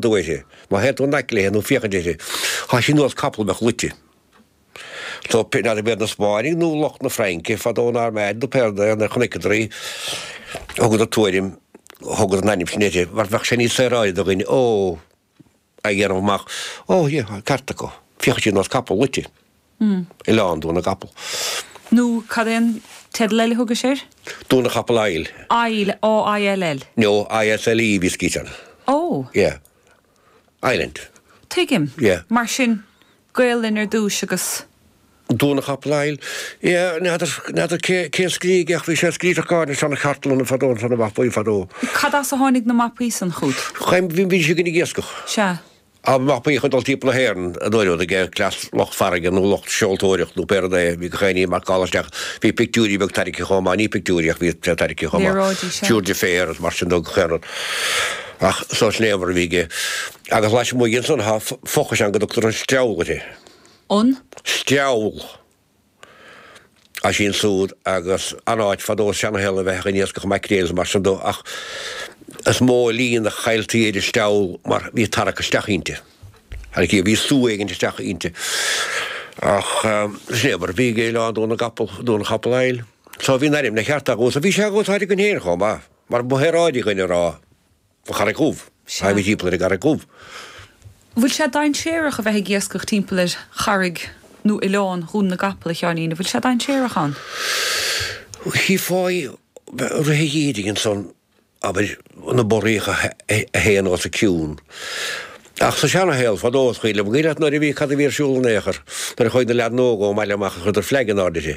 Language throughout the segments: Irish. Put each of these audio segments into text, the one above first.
dúiche. Má théann tú in aice léi nó féachaint uirthi, tá sí ar nós capaill a bheadh luite. So n'fheadar an b'iad na Spáinnigh nó lucht na Fraince fadó an Armada nó pé rud é nuair a chonaiceadar í, thugadar tuairim, thugadar an ainm sin uirthi, mar bheadh sé níos saoráide do dhuine, Ó! a dhéanamh amach, Ó, yeah, ceart acu, féachann sí ar nós capaill luite. Oileán Dún na gCapall. Nó cad é an teideal eile a thugais air? Dún na gCapall Isle. Aill, A-I-L-L? No, I-S-L-E a bhí scríte ann. Ó. Yeah. Island. Tuigim. Yeah. Mar sin, Gaelainn ar dtúis agus. Dún na gCapall Isle. Yeah, n'fheadar, n'fheadar cé, cé a scrígh é ach bhí sé scríofa gáire ins na cartlanna fadó ins na mapaí fadó. Cad as a tháinig na mapaí san chughat? Chaim, bhí, bhí siad ag iascach. Sea. Am nach mbíodh ag dul timpeall na hÉireann a n-éireodh aige, cleas lucht farraige nó lucht seoltóireacht nó pé rud é, bhí gach aon ní marcálta isteach. Bhí pictiúirí beag tairgthe chomh maith, ní pictiúirí ach bhí sé tairgthe chomh maith, léaráidí sea. túrtha faire is mar sin dó gach aon rud. Ach sórt léamh air a bhí aige. Agus lasmuigh de san, tá fochais ann go dtugtar an Steall uirthi. An? Steall. Is ansúd agus an-áit fadó sa seanashaol a bheith ag an iascach maicréil is mar sin dó ach is mó líon a cailltí ar an steall mar bhí tarrac isteach inti. Ar an cíor bhí sú éigint isteach inti. Ach sin é mar a bhí ag Oileán Dún na gCapall, Dún an Chapall Isle. So bhí an ainm ina cheart agus so bhí sé in úsáid againn féin chomh maith mar ba shaoráidí againn é a rá. An Charraig Dhubh, théimid timpeall ar an gCarraig Dhubh. An bhfuil sé dainséarach a bheith ag iascach timpeall ar charraig nó oileán Dhún na gCapall, a Sheáinín? An bhfuil sé dainséarach ann? Chífeá i rith an gheimhridh ansan, abair, na borraíocha a théann os a cionn. Ach sa seanashaol, fadó, a Chaoil, an bhfuil 'fhios a'd nuair a bhí, cad a bhí ar siúl in aon chor, nuair a chuaigh na leaideanna óga ón mbaile amach agus chuireadar fleaig in airde uirthi.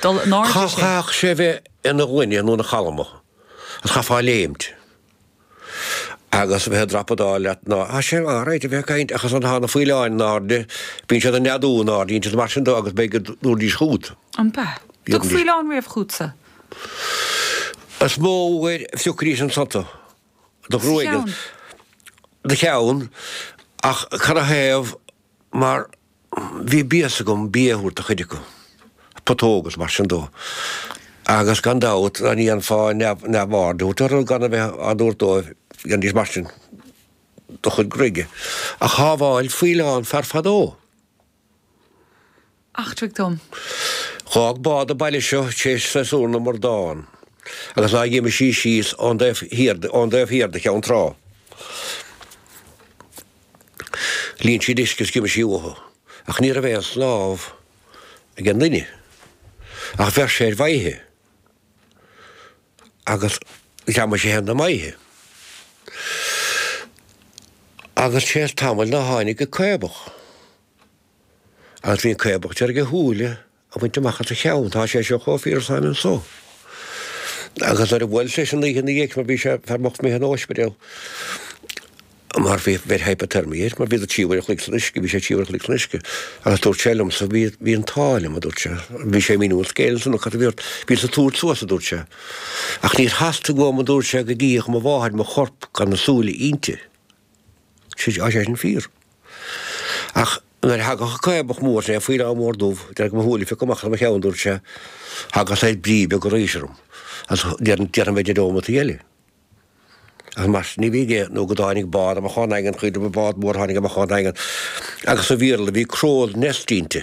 dul in airde sé. Chaithfeadh sé bheith ina ghloine nó ina chalma, agus chaithfeá léimt agus a bheith ag drapadáil leat ná, ah, sin alright a bheith ag caint ach is ann a thagann na faoileáin in airde, bíonn siad ag neadú in airde, is mar sin dó agus b'fhéidir go dtabharfaidís fút. An b'ea? Dúirt faoileán riamh chugatsa? Is mó uair a phiocfaidís ansan tú, do ghruaig, do cheann ach cad ina thaobh mar Bhí béas agam bia a thabhairt do chuid acu, putóg is mar sin dó. Agus gan dabht, dá ndéanfá neamhaird a thabhairt orthu gan a bheith á dtabhairt dóibh, dhéanfaidís mar sin do chuid gruaige. Ach shábháil faoileán fear fadó. Eachtraigh dom. Dh'fhág bád an baile seo tar éis séasúr na mbradán. Agus ná dh'imigh sí síos ón dtaobh thiar de Cheann Trá. Líon sí d'uisce is d'imigh sí uathu. Ach ní raibh aon snámh ag an nduine. Ach bheir sé ar mhaide agus ghreamaigh sé féin an maide. Agus tar éis tamaill ná tháinig an caobach. Agus bhí an caobach d'iarraidh a shúile a bhaint amach as a cheann. Tá sé seo chomh fíor is atáim anso. Agus nuair a bhuaileas leis an oíche ina dhiaidh sin, mar bhí sé fear bocht imithe in óispidéal, mar bhí bheir hypothermia air, mar bhí dó trí huaire a chloig san uisce, bhí sé trí huaire a chloig san uisce. Agus dúirt sé liomsa, bhí, bhí an t-ádh liom, a dúirt sé. Bhí sé ag míniú an scéil ansin, nó cad a bhí ort, bhíos ag tabhairt suas, a dúirt sé. Ach níor theastaigh uaim, a dúirt sé, go gcífeadh mo mháthair mo chorp gan na súile inti. Tá sé sin fíor. Ach nuair a thagadh an caobach mór sin, é faoileán mór dubh, d'iarraidh mo shúile a phiocadh amach as mo cheann, dúirt sé. Thagadh saghas brí beag arís orm, agus déarfainn b'fhéidir neomataí eile. Ach mar sin a bhí aige nó go dtáinig bád amach ón nDaingean, chaoin, bád mór a tháinig amach ón nDaingean, agus sa bhioral bhí crow's nest inti.